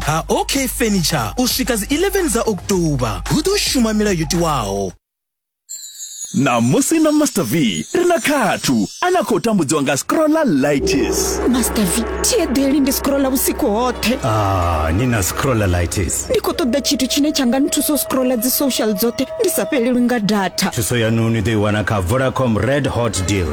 ha ok furniture u swika dzi 11 dza october hu ḓo shuma milayo yo tiwaho ṋamusi na master v ri na khathu a na khou tambudziwa nga scrolla lights master v thieḓeli ndi scrolla vhusiku hoṱhe ah, ni na scrolla lights ndi khou ṱoḓa tshithu tshine tsha nga nthusa u scrolla dzi social dzoṱhe ndi sa fhelelwi nga data thuso yanu ni ḓo i wana kha vodacom red hot deal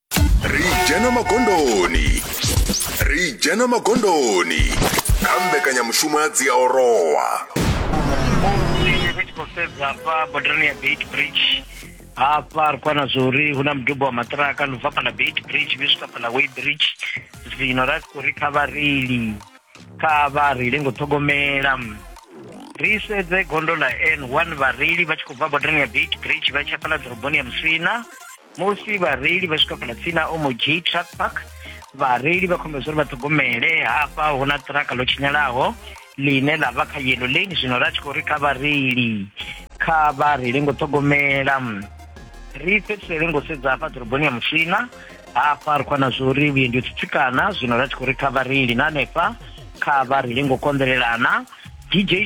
ri dzhena magondoni ri dzhena magondoni kha mbekanyamushumo ya dziaorowa ri tshi khou sedza hafha bodarani ya beit bridge hafha ri khou wana zwa uri hu na mudubo wa maṱiraka no bva fhaḽa beit bridge vhe swika fhaḽa way bridge zwino ra tshi khou ri kha vhareili kha vha reile ngo ṱhogomela ri sedze gondo ḽa n one vhareili vha tshi khou bva bodarani ya beit bridge vha tshi ya fhaḽa ḓoroboni ya musina musi vhareili vha swika fhala tsini na omog truck park vhareili vha khombedzwa uri vha ṱhogomele hafha hu na ṱiraka ḽo tshinyalaho ḽine ḽa vha kha yellow lane zwino ra tshi khou ri kha vhareili kha vha reile ngo ṱhogomela ri fhedzisele ngo sedza hafha ḓoroboni ya musina hafha ri khou na zwa uri vhuendi u tsitsikana zwino ra tshi khou ri kha vhareili na hanefha kha vha reile ngo konḓelelana dj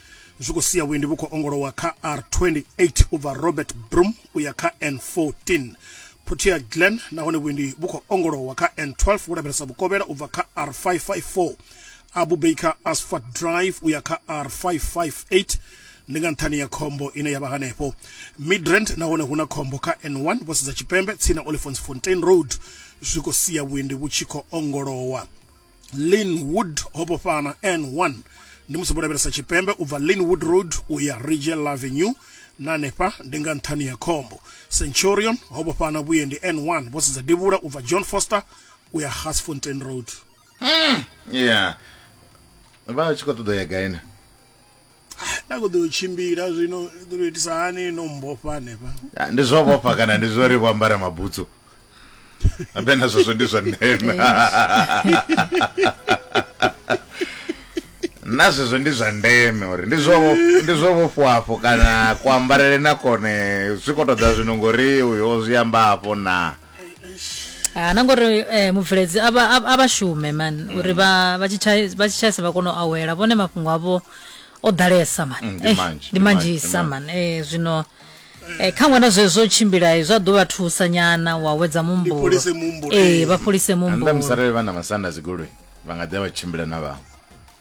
zwi khou sia vhuendi vhu khou ongolowa kha R28 u bva Robert Broom u ya kha N14 Protea Glen nahone vhuendi vhu khou ongolowa kha N12 vhu lavhelesa vhukovhela u bva kha R554 Abu Baker Asphalt Drive u ya kha R558 ndi nga nṱhani ya khombo ine yavha hanefho midrand nahone hu na khombo kha n1 vho sedza tshipembe tsini na olifons fontain road zwi khou sia vhuendi vhu tshi khou ongolowa linwood ho vhofhana n1 ndi musi vho lavhelesa tshipembe u bva linwood road u ya rigel avenue na hanefha ndi nga nṱhani ya khombo centurion ho vhofhana vhuendi n1 vho sedza devhula u bva john foster u ya gasfontein road mm, yeah vha tshi khou ṱoḓa ya gaina nda kho ḓo tshimbila zwino ḓo itisa hani no mbofha hanefha ah, ndi zwo vhofha kana ndi zwo ri vho ambara mabutsu ambe na zwezwo ndi zwa ndeme na zwezwo ndi zwa ndeme uri ndi zwo ndi zwo vhofhafho kana kuambarele na kone zwi khou ṱoḓa zwino ngori uyo zwi amba afho na ha na ngori eh, mubveledzi a vha- a vha- a vha shume man uri vha vha tshitshai- vha tshitshaisa vha kone u awela vhone mafhungo avho o ḓalesa man Mm, ndi Eh, manzhi, ndi ndi manzhi, manzhisa ndi man Eh, zwino eh, kha ṅwana zwezwo tshimbila eh, zwa ḓo vha thusa nyana wa wedza muhumbulo fholise muhumbulo, Eh, eh. vha fholise anda muhumbulo musarele vha na masanda dzigoloi vha nga ḓi vha tshimbila na vhaṅwe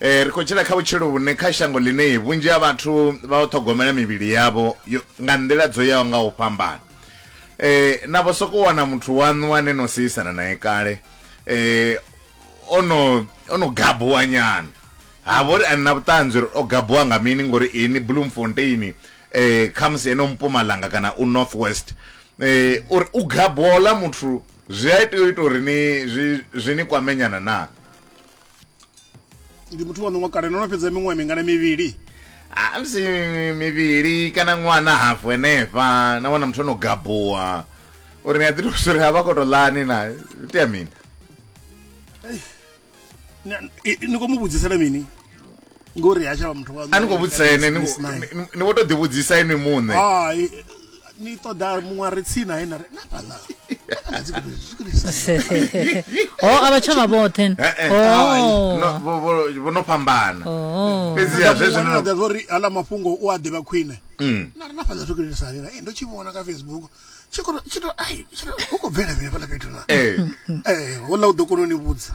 Ri khou tshila kha vhutshilo vhune kha shango ḽine vhunzhi ha vhathu vha u ṱhogomela mivhili yavho nga nḓila dzo yaho nga u fhambana. Na vho sokou wana muthu waṋu ane no seisana nae kale o no o no gabuwa nyana ha vhori a ni na vhuṱanzi uri o gabuwa nga mini ngori ini Bloemfontein khamusi ene u Mpumalanga kana u North West uri u gabuwa houḽa muthu zwi a tea u ita uri ni zwi zwi ni kwame nyana naa? ndi muthu wa ṋoṅwa kale no no fhedza miṅwaha mingana mivhili amusi mivhili kana ṅwana hafu henefha na wana muthu ono gabuwa uri ni a ḓi tou uri a vha koto ḽani na itea mini ni khou mu vhudzisela mini ngori ha tshavha muthu a ni khou vhudzisa ene ni vho tou ḓivhudzisa ini muṋe hai ni ṱoḓa muṅwe a re tsini nae na re na fhaḽa ho a vha tshavha vhoṱhe eh, eh. oh. vho no fhambana oh. fhedziha zwezwonoda zwo ri hala mafhungo u a ḓivha khwine mm. na re na fhaḽa zwi kulisa lena ndo tshi vhona kha facebook tshi khou bvela vhele fhaḽa fhethu na eh. houḽa u ḓo kona u ni vhudza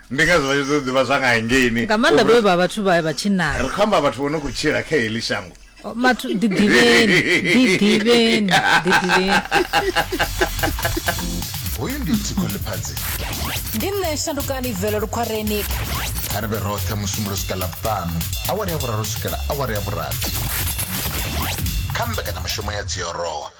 Ndi ngazwo vha tshi ṱoḓa u ḓivha zwa nga hangeini. Nga maanḓa vhe vha vhathu vha vha tshinnani. Ri khou amba vhathu vho no khou tshila kha heḽi shango. Mathu, ḓiḓivheni, ḓiḓivheni, ḓiḓivheni. Hoyu ndi Thikho Ḽiphadzi. Ndi nṋe Shandukani Velo Lukhwareni. Kha ri vhe roṱhe Musumbulo swika Ḽavhuṱanu, awara ya vhuraru swikela awara ya vhurathi kha mbekanyamushumo ya Dziorowa.